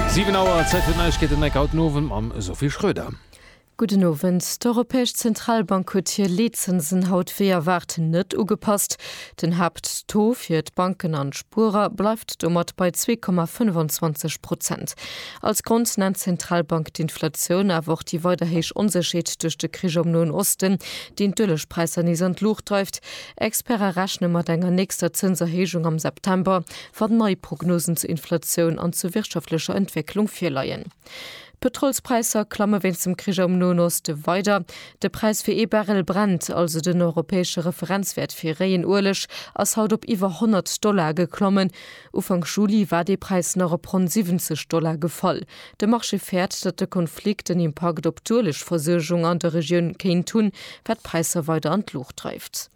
Siwen Auer, Zäit fir d'Neiegkeeten, Mike, haut den Owend mam Sophie Schröder. Gudden Owend. D'Europäesch Zentralbank huet hir Leetzinsen haut wéi erwaart net ugepasst. Den Haapttaux fir d'Banken an d'Spuerer bleift domat bei zwee Komma 25 Prozent. Als Grond nennt d'Zentralbank d'Inflatioun, awer och déi weider héich Onsécherheet duerch de Krich am Noen Osten, deen d'Uelegpräisser nees an d'Luucht dreift. Experte rechne mat enger nächster Zënserhéijung am September, wann nei Prognosen zur Inflatioun an zur wirtschaftlecher Entwécklung virleien. D'Pëtrolspräisser klamme wéinst dem Krich am Noen Oste weider. De Präis fir ee Barrel Brent, also den europäesche Referenzwäert fir réien Ueleg, ass haut op iwwer 100 Dollar geklommen. Ufank Juli war dee Präis nach op ronn 70 Dollar gefall. De Marché fäert, datt de Konflikt en Impakt op d'Uelegversuergung an der Regioun kéint hunn, wat d'Präisser weider an d'Luucht dreift.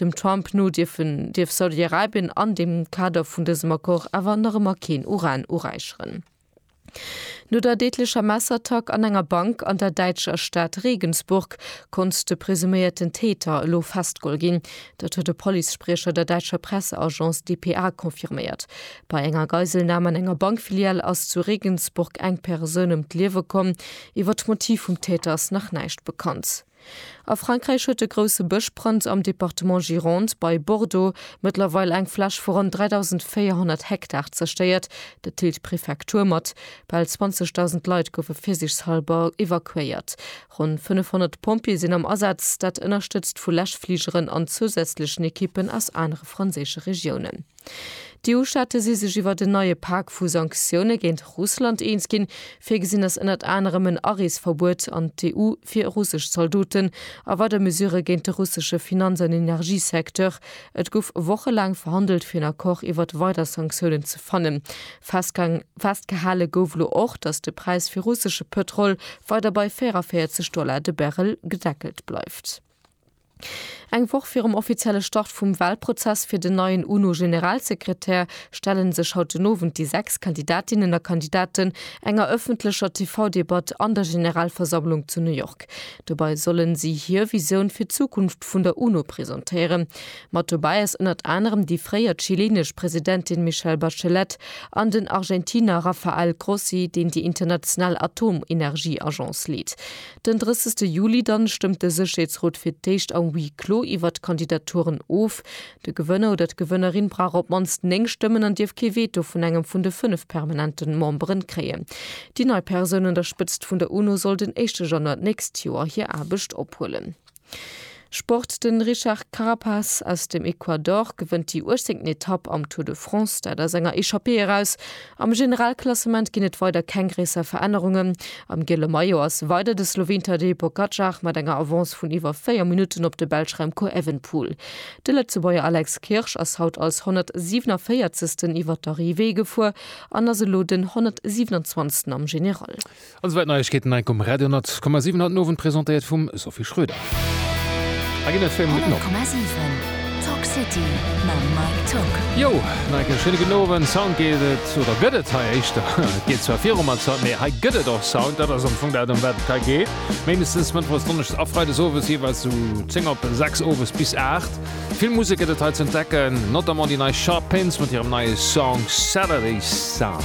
Dem Trump no dierfen dierf Saudi-Arabien an dem Kader vun dësem Accord awer nach ëmmer keen Uran uräicheren. No der deedlecher Messerattack an enger Bank an der däitscher Stad Regensburg konnt de presuméierten Täter elo festgeholl ginn. Dat huet e Police-Spriecher der däitscher Presseagence dpa confirméiert. Bei enger Geiselnam an enger Bankfilial ass zu Regensburg eng Persoun ëm d'Liewe komm. Iwwer d'Motiv vum Täter ass nach näischt bekannt. A Frankräich huet e grousse Bëschbrand am Departement Gironde bei Bordeaux mëttlerweil eng Fläch vu ronn 3.400 Hektar zerstéiert. Dat deelt d'Prefektur mat. Bal 20.000 Leit goufe virsichshalber evakuéiert. Ronn 500 Pompjeeë sinn am Asaz, dat ënnerstëtzt vu Läschfligeren an zousätzlechen Ekippen aus anere franséische Regiounen. D'EU-Staate si sech iwwert en neie Pak vu Sanktioune géint Russland eens ginn. Virgesinn ass ënnert anerem en Areesverbuet an d'EU fir russesch Zaldoten a weider Mesurë géint de russesche Finanz an Energiesecteur. Et gouf wochelaang verhandelt fir en Accord iwwert weider Sanktiounen ze fannen. Festgehale gouf elo och, datt de Präis fir russesche Pëtrol weider bei 44 Dollar de Barrel gedeckelt bleift. Eng Woch virum offizielle Start vum Walprozess fir den neien UNO-Generalsekretär stellen sech haut den Owend déi sechs Kandidatinnen a Kandidaten enger ëffentlecher TV-Debatt an der Generalversammlung zu New York. Dobei sollen si hir Visioun fir d'Zukunft vun der UNO presentéieren. Mat dobäi ass ënnert anerem déi fréier chileenesch Presidentin Michelle Bachelet an den Argentiner Rafael Grossi, deen déi international Atomenergieagence leet. Den 30 Juli dann stëmmt de Sécherheetsrot fir d'éischt am Huis clos iwwert d'Kandidaturen of. De Gewënner oder d'Gewënnerin brauch op d'mannst 9 Stëmmen an dierf kee Veto vun engem vun de 5 permanenten Memberen kréien. Déi nei Persoun un der Spëtzt vun der UNO soll den éischte Januar d'nächst Joer hir Aarbecht ophuelen. Sport, De Richard Carapaz aus dem Ecuador gewënnt déi 18. Etapp am Tour de France, dat aus enger Echappée eraus. Am Generalklassement ginn et weider keng gréisser Verännerungen. Am giele Maillot ass weider de Sloween Tadej Pogacar mat enger Avance vun iwwer 4 Minutten op de Belsch Remco Evenepoel. De Lëtzebuerger Alex Kirsch ass haut als 147. iwwert d'Arrivée gefuer an ass elo den 127. am General. An souwäit Neiegkeeten hei um Radio 10,7 haut den Owend presentéiert vum Sophie Schröder. Hei ginn et fir Minutten op. 100,7 Talk City mam Mike Tock. Yo, nach eng Kéier schéine gudden Owend. Sound geet et, oder gëtt et hei éischter. Et geet zwar viru mat Sound, mee hei gëtt et och Sound. Dat ass am Fong dat, ëm wat et hei geet. Méindestens mëttwochs, donneschdes a freides owes jeeweils vu 10 op 6 owes bis 8. Vill Musek gëtt et hei ze entdecken, notamment déi nei Sharp Pins mat hirem neie Song Saturday Sun.